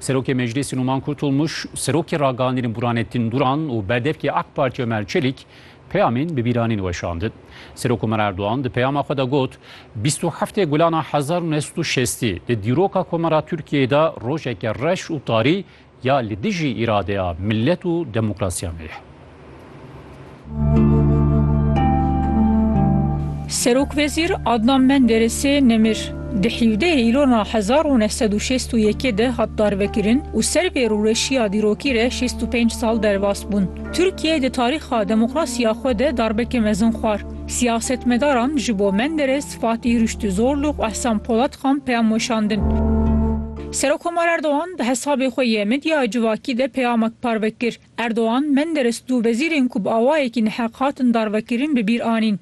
Serokê Meclîsê Numan Kurtulmuş, Serokê Ragihandînê Burhanettin Duran û Berdevkê AK Partî Ömer Çelik peyamên bi bîranîn weşandin. Serok Ömer Erdogan di peyama xwe de got, bîst û heftê gulana hezar û neh sed û şestî di dîroka komara Tirkiyeyê de rojeke reş û tarî ya li dijî îradeya milet û demokrasiya me ye. Serokwezîr Adnan Menderesê nemir di hîvdehê îlona hezar û neh sed û şêst û yekê de hat darvekirin û ser vê rûreşiya dîrokî re şêst û pênc sal derbas bûn. Tirkiye di tarîxa demokrasiya xwe de darbeke mezin xwar. Siyasetmedaran ji bo Menderes, Fatîh Rüştü Zorluk û Ehsan Polatxan peyam weşandin. Serokkomar Erdogan di hesabê xwe yê medya civakî de peyamek parve kir. Erdogan, Menderes du wezîrên ku bi awayekî neheq hatin darvekirin bi bîr anîn.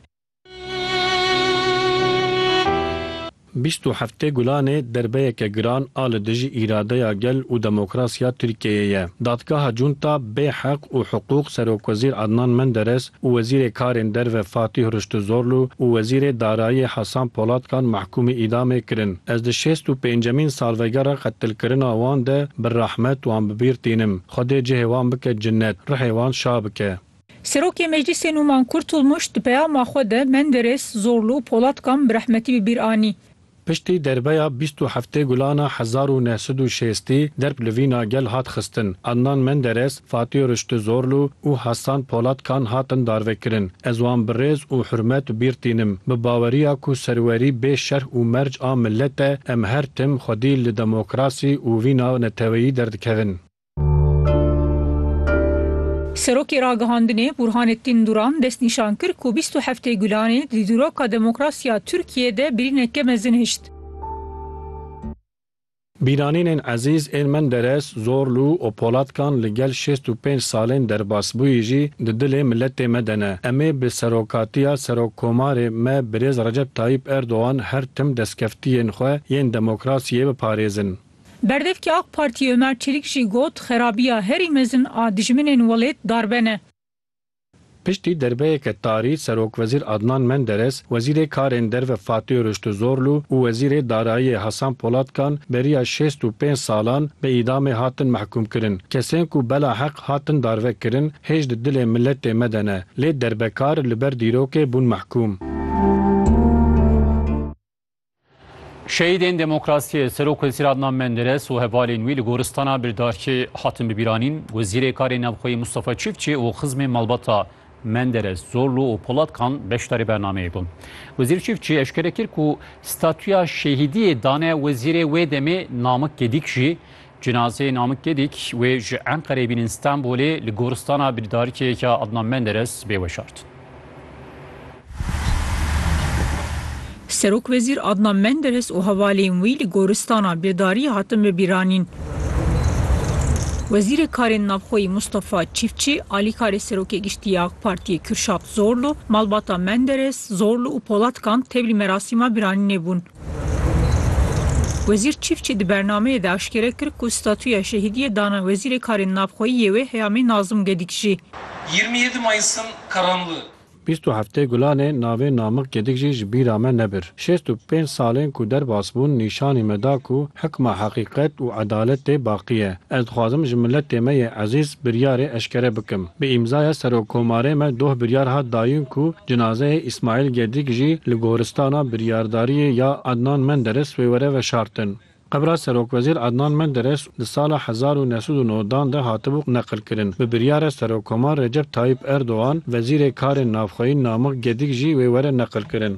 Bîst û heftê Gulanê derbeyeke giran a li dijî îradeya gel û demokrasiya Tirkiyeyê ye. Dadgeha Cûnta bê heq û hiqûq Serokwezîr Adnan Menderes û Wezîrê Karên Derve Fatîh Riştuzorlu û Wezîrê Darayiyê Hasan Polatkan mahkûmî îdamê kirin. Ez di şêst û pêncemîn salvegera qetilkirina wan de bi rehmet wan bi bîr tînim. Xwedê cihê wan bike cinnet, ruhê wan şa bike. Serokê Meclîsê Nûman Kurtulmuş di peyama xwe de Menderes, Zorlu û Polatkan bi rehmetî bi bîr anî. Piştî derbeya bîst û heftê gulana hezar û neh sed û şêstî derb li vîna gel hat xistin, Adnan Menderes, Fatî Riştî Zorlu û Hasan Polat Kan hatin darvekirin. Ez wan bi rêz û hurmet bîr tînim. Bi baweriya ku serwerî bê şerh û merc a milet e, em her tim xwedî li demokrasî û vîna neteweyî derdikevin. Serokê Ragihandinê Burhanettin Duran destnîşan kir ku bîst û heftê Gulanê di dîroka demokrasiya Tirkiyeyê de birîneke mezin hişt. Bîranînên Ezîz ên Menderes, Zorlû û Polatkan li gel şêst û pênc salên derbasbûyî jî di dilê miletê me de ne. Em ê bi serokatiya Serokkomarê me Birêz Recep Tayîp Erdogan her tim destkeftiyên xwe yên demokrasiyê biparêzin. Berdevkê AK Partiyê Ömer Çelik jî got, Xerabiya herî mezin a dijminên welêt darbe ne. Piştî derbeyeke tarî Serokwezîr Adnan Menderes, Wezîrê Karên Derve Fatih Rüştuzorlu û Wezîrê Darayiyê Hasan Polatkan beriya şêst û pênc salan bi îdamê hatin mehkûmkirin. Kesên ku bela heq hatin darve kirin hêj di dilê miletê me de ne, lê derbekar li ber dîrokê bûn mehkûm. Şehîdên demokrasiyê Serok Wezîr Adnan Menderes û hevalên wî li goristana Birdarkê hatin bibîranîn. Wezîrê Karê Navxweyî Mustafa Çiftçi û xizmên malbata Menderes, Zorlu û Polatkan beşdarî bernameyê bûn. Wezîr Çiftçi eşkere kir ku statûya şehîdiyê dane wezîrê wê demê Namik Gedik jî Cinazeyê Namik Gedik wê ji Enqereyê bînin Stenbolê li goristana birîdarikek ya Adnan Menderes bê weşartin. Serokwezîr Adnan Menderes û hevalên wî li goristana birdariyê hatin bibîranîn. Wezîrê Karên Navxweyî Mustafa Çîfçî, alîkarê Serokê Giştî ya AK Partiyê Kürşat Zorlu, malbata Menderes, Zorlu û Polatkan tevlî merasîma biranînê bûn. Wezîr Çîfçî di bernameyê de aşkere kir ku statuya şehîdiyê dana Wezîrê Karên Navxweyî yê wê heyamê Nazim Gedikjî. Yirmi yedi Mayıs'ın karanlığı. Bîst û heftê Gulanê navê Namık Gedikjî ji bîra me nebir. Şêst û pênc salên ku derbas bûn nîşanî me da ku hikma heqîqet û edaletê baqî ye. Ez dixwazim ji miletê me yê ezîz biryarê eşkere bikim. Bi îmzaya Serokkomarê me doh biryar hat dayîn ku cinazeyê Îsmaîl Gedik jî li goristana biryardariyê ya Adnan Menderes wê were veşartin. Qebra Serokwezîr Adnan Menderes di sala hezar û neh sed û neh dan de hatibû neqilkirin. Bi biryara Serokkomar Recep Tayyîp Erdogan, Wezîrê Karên Navxweyî Namik Gedik jî wê were neqilkirin.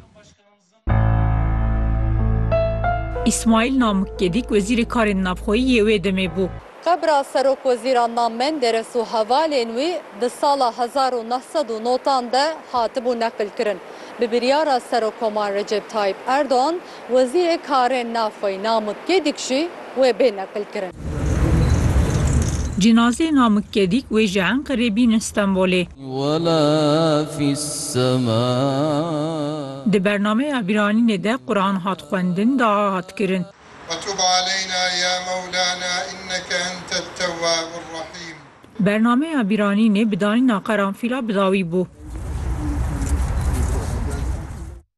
Îsmaîl Namik Gedîk Wezîrê Karên Navxweyî yê wê demê bû. Qebra Serokwezîran na Menderes û hevalên wî di sala hezar û neh sed û notan de hatibû neqilkirin. Bi biryara Serokoman Recep Tayyîp Erdogan, Wezîrê Karên Navxweyî Namik Gedîk jî wê bê neqilkirin. Cinazeyê Namik Gedîk wê ji Enqerê bînin Stenbolê. Di bernameya bîranînê de Quran hat xwendin, dua hat kirin. Bernameya bîranînê bi danîna qeranfîla bi dawî bû.